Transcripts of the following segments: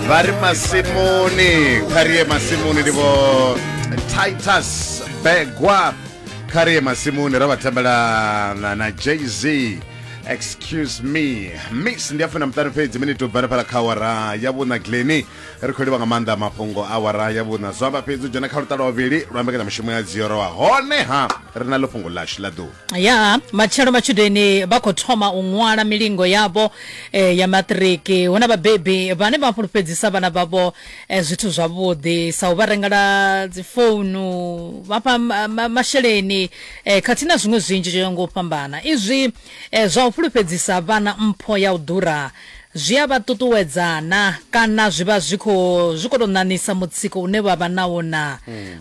vha ri masimuni kha ri ye masimuni ndi vho titus begwa kha ri ye masimuni ra vha tambela na, na jz excuse me miss ndi a funa muṱani fhedzi mini to bvana phala kha awara ya vhuna gleni ri khou livha nga maanḓa mafhungo awara ya vhuna zwo amba fhedzi u dzhena kha luṱa lwa vhavhili lwa mbekanya mushumo ya dziorowa honeha ri na ḽo fhungo ḽashu ḽa ḓuvha ya matshelo matshudeni vha khou thoma u ṅwala milingo yavho eh, ya maṱiriki hu na vhabebi vhane vha fhulufhedzisa vhana vhavho eh, zwithu zwavhuḓi sa u vha rengela dzifounu vha fha ma- ma- masheleni eh, khathihi na zwiṅwe zwinzhi zwo yaho nga u fhambana izwi eh, zwa u fhulufhedzisa vhana mpho ya u ḓura Zwi a vha ṱuṱuwedza naa, kana zwi vha zwi khou zwi khou tou ṋaṋisa mutsiko une vha vha nawo naa?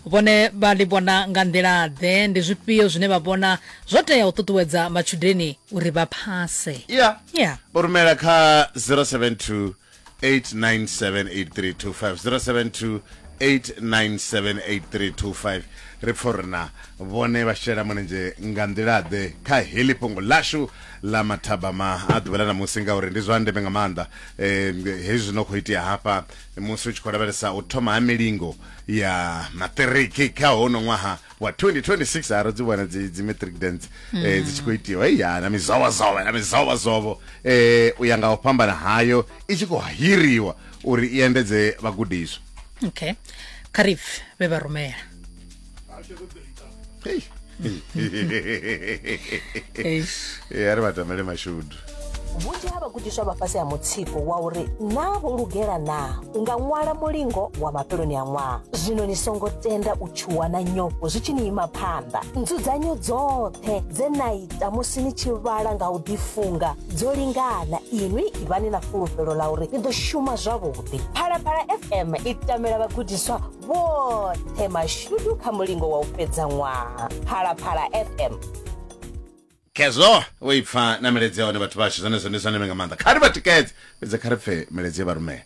Vhone vha ḽi vhona nga nḓila-ḓe? Ndi zwifhio zwine vha vhona zwo tea u ṱuṱuwedza matshudeni uri vha phase? Ya. Ya. U rumela kha 0728978325, 0728978325. Ri pfa uri naa vhone vha shela mulenzhe nga nḓila-ḓe kha heḽi fhungo ḽashu ḽa mathabama a ḓuvha ḽa ṋamusi ngauri ndi zwa ndeme nga maanḓa um hezwi zwi no khou itea hafha musi u tshi khou lavhelesa u thoma ha milingo ya maṱiriki kha hono ṅwaha wa 2026 a ro dzi vhona dzi dzi matric dance um dzi tshi khou itiwa hei ya na mizovhozovho na mizovhozovho um u ya nga u fhambana hayo i tshi khou hiriwa uri i endedze vhagudiswa okay kha ri pfe vhe vha rumela Hey. Eish. Eh, ari vatamele mashudu vhunzhi ha vhagudiswa vha fhasi ha mutsiko wa uri naa vho lugela naa u nga ṅwala mulingo wa mafheloni a ṅwaha zwino ni songo tenda u tshuwa na nyofho zwi tshi ni ima phanḓa nzudzanyo dzoṱhe dze na ita musi ni tshi vhala nga u ḓifunga dzo lingana inwi ivhani na fulufhelo ḽa uri ni ḓo shuma zwavhuḓi phalaphala fm i tamela vhagudiswa vhoṱhe mashudu kha mulingo wa u fhedza ṅwaha phalaphala fm khezwo wo ipfa na miledzi ya hone vhathu vhashu zwenezwo ndi zwa ndeme nga maanḓa kha ri vha tikedze fhedze kha ri pfe miledzi ye vha rumela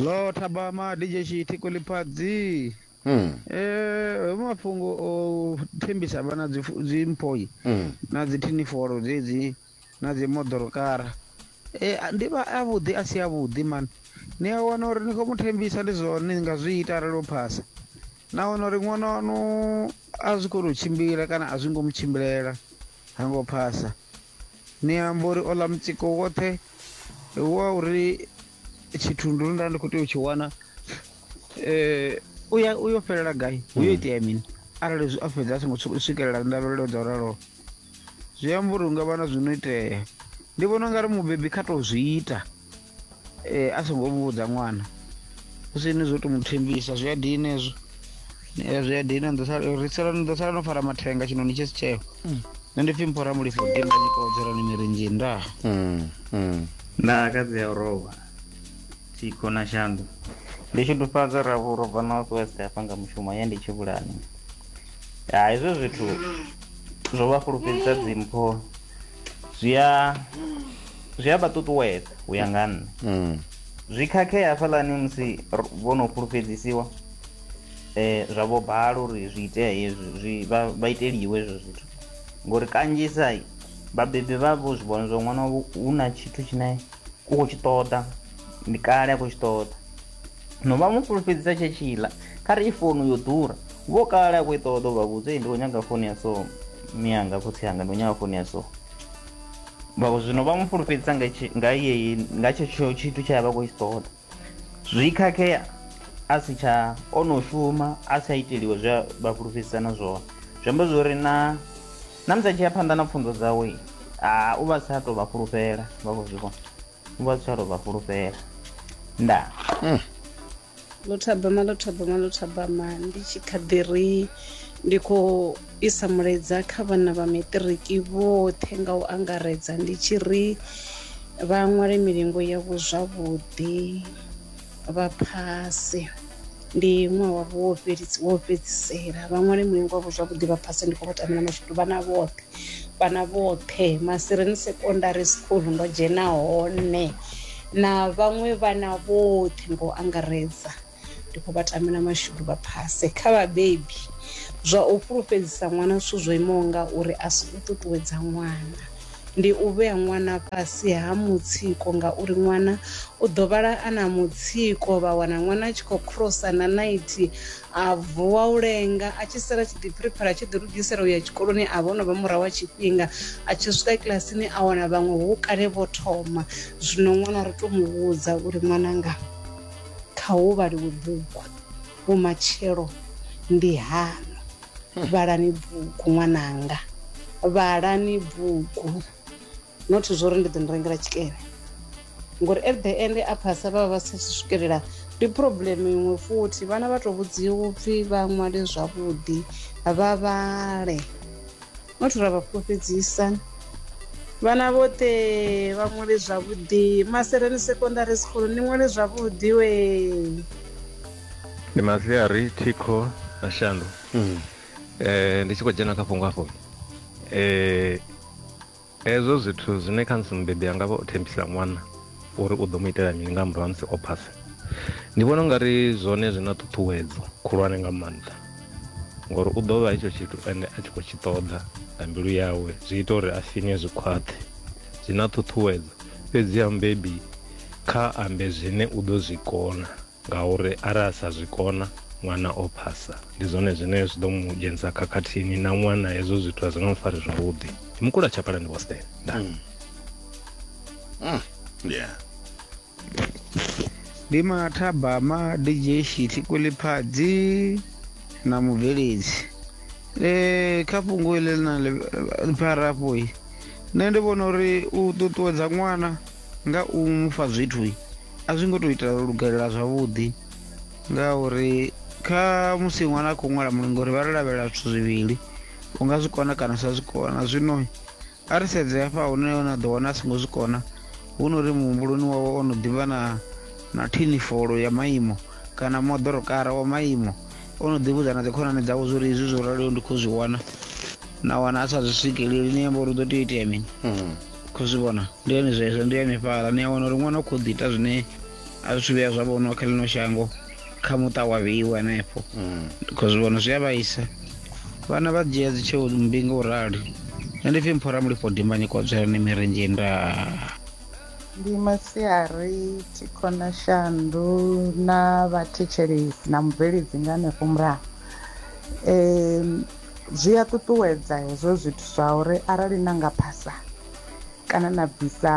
lo thabama dj shiti kuliphadzi Mm, eh hoyu mafhungo o thembisa vhana dzi- dzimpoi mm. na dzi thinifolo dzedzi na dzi moḓoro kara e, ndi vha a vhuḓi a si a vhuḓi mani ni a wana uri ni khou mu thembisa ndi zwone ni nga zwi ita arali o phasa na wana uri ṅwana wanu a zwi koni u tshimbila kana a zwi ngo mu tshimbilela ha ngo phasa ni amba uri ola mutsiko woṱhe wa uri tshithundu nda ndi khou tea u tshi wana um uya uyo fhelela gai hu yo hmm. itea mini arali a fhedza a songo swikelela ndavhelelo dza u raloho zwi amba uri hu nga vha na zwi no itea ndi vhona u nga ri mubebi kha tou zwi ita um a songo vhudza ṅwana hu si ni zwo to mu thembisa zwi a dina hezwo Eh, zwi a dina ni ḓo sala- ri sala- ni ḓo sala no fara mathenga tshino ni tshi si tsheo nṋe ndi pfhi mphora mulifho dimba nyikodzerani mirinzhi ndaa Mm, mm. nda akadzi ya u rovha thikho na shandu ndi tshudufhadza ravhu ro bva north west hafha nga mushumo ye ndi tshivhulani ya hezwo zwithu zwo vha fhulufhedzisa dzimpho zwi a zwi a vha ṱuṱuwedza u ya nga nne mm. zwi khakhea hafhalani musi vho no fhulufhedzisiwa eh zwa vho bala uri zwi itea hezwi zwi vha iteliwe hezwo zwithu ngori kanzhisa vhabebi vha vho zwi vhona zwa ṅwana hu na tshithu tshine u khou tshi ṱoḓa ndi kale a khou tshi ṱoḓa no vha mu fulufhedzisa tshe tshiḽa kha ri i founu yo ḓura vho kale a khou i ṱoḓa u vha vhudza ndi khou nyanga founu ya so miyanga khotsi yanga ndi khou nyanga founu ya so vha zwino vha mu fulufhedzisa nga yeyi nga tshetsho tshithu tsha ya vha khou tshi ṱoḓa zwi khakhea a si tsha o no shuma a si a iteliwe zwe vha fulufhedzisana zwone zwi amba zwo uri na na musi a tshi ya phanḓa na pfunzo dzawe u vha sa tou vha fulufhela vha khou zwi vhona vha si tsha tou vha fhulufhela ndaa mm. ḽo thabama ḽo thabama ḽo thabama ndi tshi kha ḓi ri ndi khou isa mulaedza kha vhana vha maṱiriki vhoṱhe nga u angaredza ndi tshi ri vha ṅwale milingo yavho zwavhuḓi vha phase ndi ṅwaha wavho wo fhedzisa wo fhedzisela vha ṅwale mulingo wavho zwavhuḓi vha phase ndi kho vha tamela mashudu vhana vhoṱhe vhana vhoṱhe masireni secondary school ndo dzhena hone na vhaṅwe vhana vhoṱhe ngo angaredza ndi khou vha tamela mashudu vha phase kha vhabebi zwa u fhulufhedzisa ṅwana zwithu zwo imaho nga uri a si u ṱuṱuwedza ṅwana ndi u vhea ṅwana fhasi ha mutsiko ngauri ṅwana u ḓo vhala a na mutsiko vha wana ṅwana a tshi khou crossa na naithi a vuwa u lenga a tshi sala tshi ḓi phiriphara tshi ḓi lugisela u ya tshikoloni a vha o no vha murahu wa tshifhinga a tshi swika kilasini a wana vhaṅwe hu kale vho thoma zwino ṅwana ri to mu vhudza uri ṅwananga kha hu vhaliwe bugu Vhumatshelo ndi haṋu. Vhalani bugu ṅwananga, vhalani bugu not zwori ndi ḓo ni rengela tshikene ngori at the end a phasa vha vha vha si swikelela ndi problem iṅwe futhi vhana vha to vhudziwa upfhi vha ṅwale zwavhuḓi vha vhale. not ra vha fhulufhedzisa vhana vhoṱhe vha ṅwale zwavhuḓi masereni secondary school ni ṅwale zwavhuḓi we ndi maziari thikho na shandu mm. eh, ndi tshi khou dzhena kha fhungo afho eh, hezwo zwithu zwine kha musi mubebi anga vha o thembisa ṅwana uri u ḓo mu itela mini nga murahu ha musi o phasa ndi vhona ungari zwone zwi na ṱhuṱhuwedzo khulwane nga maanḓa ngori u ḓo vha hetsho tshithu ende a tshi khou tshi ṱoḓa nga mbilu yawe zwi ita uri a sinywe zwi khwaṱhe zwi na ṱhuṱhuwedzo fhedzi ya mubebi kha ambe zwine u ḓo zwi kona ngauri arali a sa zwi kona ṅwana o phasa ndi zwone zwine zwi ḓo mu dzhenisa khakhathini na ṅwana hezwo zwithu a zwi nga mu fari zwavhuḓi mukula tshapalani boston nda mm. mm. yeah ndi mathabama dj shiti kweliphadzi na mubveledzi e, kha fhungo ile lina ḽipharafho i nṋe ndi vhona uri u ṱuṱuwedza ṅwana nga u mufha zwithu i, a zwi ngo tou ita lugelela zwavhuḓi ngauri kha musi ṅwana a khou ṅwala mulingo uri vha ri lavhelela zwithu zwivhili u nga zwi kona kana u sa zwi kona zwino A ri sedze hafha hune na ḓo wana a songo zwi kona, hu no ri muhumbuloni wawe o no ḓi vha na, na thinifolo ya maimo kana moḓorokara wa maimo. O no ḓi vhudza na dzikhonani dzawe zwo ri izwi zwo raliho ndi khou zwi wana, na wana a sa zwi swikeleli, ni amba uri hu ḓo tea u itea mini? Khou zwi vhona? Ndi hone zwezwo, ndi hanefhaḽa. Ni a wana uri ṅwana u khou ḓi ita zwine a zwi thu vhuya zwa vhonwa kha ḽino shango. kha muṱa wa vheiwa henefho kho zwi vhona zwi a vhaisa vhana vha dzhia dzi tsheo mbinga u rali nṋe ndi pfhi mphora mulifho dimbanyi kodzwerani mirendzhe nda ndi masiari thikhona shandu na vhathetshelesi na mubveledzi nga hanefho murahu um zwi a ṱuṱuwedza hezwo zwithu zwa uri arali na nga phasa Kana na bvisa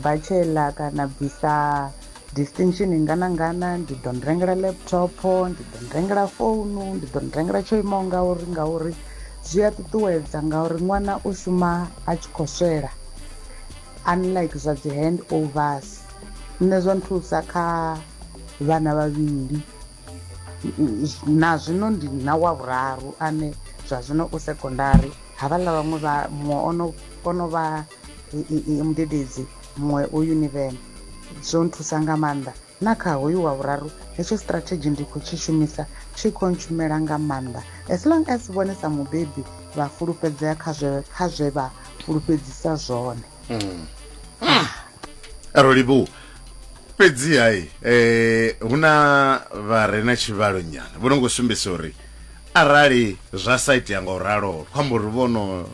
bachelor kana na bvisa distinction ngana ngana ndi ḓo ni rengela laptop ndi ḓo ni rengela founu ndi ḓo ni rengela tsho imaho ngauri ngauri zwi a ṱuṱuwedza ngauri ṅwana u shuma a tshi khou swela unlike zwa dzi hand overs nṋe zwa nthusa kha vhana vhavhili Na zwino ndi na wa vhuraru ane zwa zwino u sekondari, havhaḽa vhaṅwe vha muṅwe ono ono vha mudededzi muṅwe u yunivene. Zwo nthusa nga maanḓa na kha hoyu wa vhuraru hetsho strategy ndi kho tshi shumisa tshi kho ntshumela nga maanḓa as long as vhone sa mubebi vha fulufhedzea kha zwe kha zwe vha fulufhedzisa zwone. Mm. Ah. rolibu fhedzi hai eh hu na vha re na tshivhalo nyana vho no ngo sumbisa uri arali zwa sa itea nga u ralo kho amba uri vhono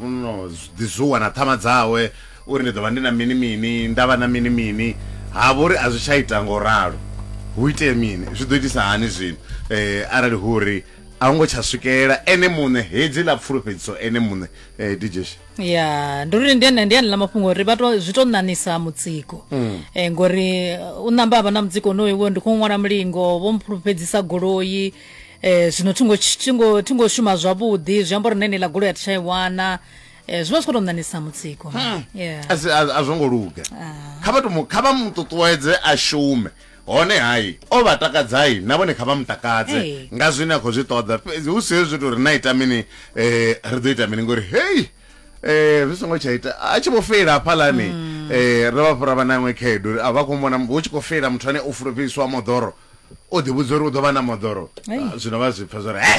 no ḓi zuwa na ṱhama dzawe uri ndi ḓo vha ndi na mini mini nda vha na mini mini ha vhori a zwi tsha ita nga u ralo hu itee mini zwi ḓo itisa hani zwino eh arali hu uri a hu ngo tsha swikelela ene muṋe hedzi ḽa pfulufhedziso ene muṋe eh DJ Sha. ya ndi uri ndi ene ndi ene ḽa mafhungo uri vha to zwi to ṋaṋisa mutsiko mm. eh, ngori uh, u namba avha na mutsiko onoyo wo ndi khou ṅwala mulingo vho mphulufhedzisa goloi eh, zwino thingo thingo thingo shuma zwavhuḓi zwi amba uri nene ḽa goloi a thi tsha i wana eh, zwi vha zwi khou to ṋaṋisa mutsiko hmm. a zwo ngo luga ah. kha vha to kha vha mu ṱuṱuwedze a shume hone hai o vha takadzai na vhone kha vha mu takadze Ee. nga zwine a khou zwi ṱoḓa fhedzi hu si hezwi zwithu uri na ita mini eh, ri ḓo ita mini ngori hei eh, zwi songo tsha ita a tshi vho feila hafhalani eh, ri vha fhura vha na iṅwe khaedu uri a vha khou mona hu tshi khou feila muthu ane o fulufhedzisiwa moḓoro o ḓivhudza uri u ḓo vha na moḓoro Ei. Ah, zwino vha zwi pfa zwa uri he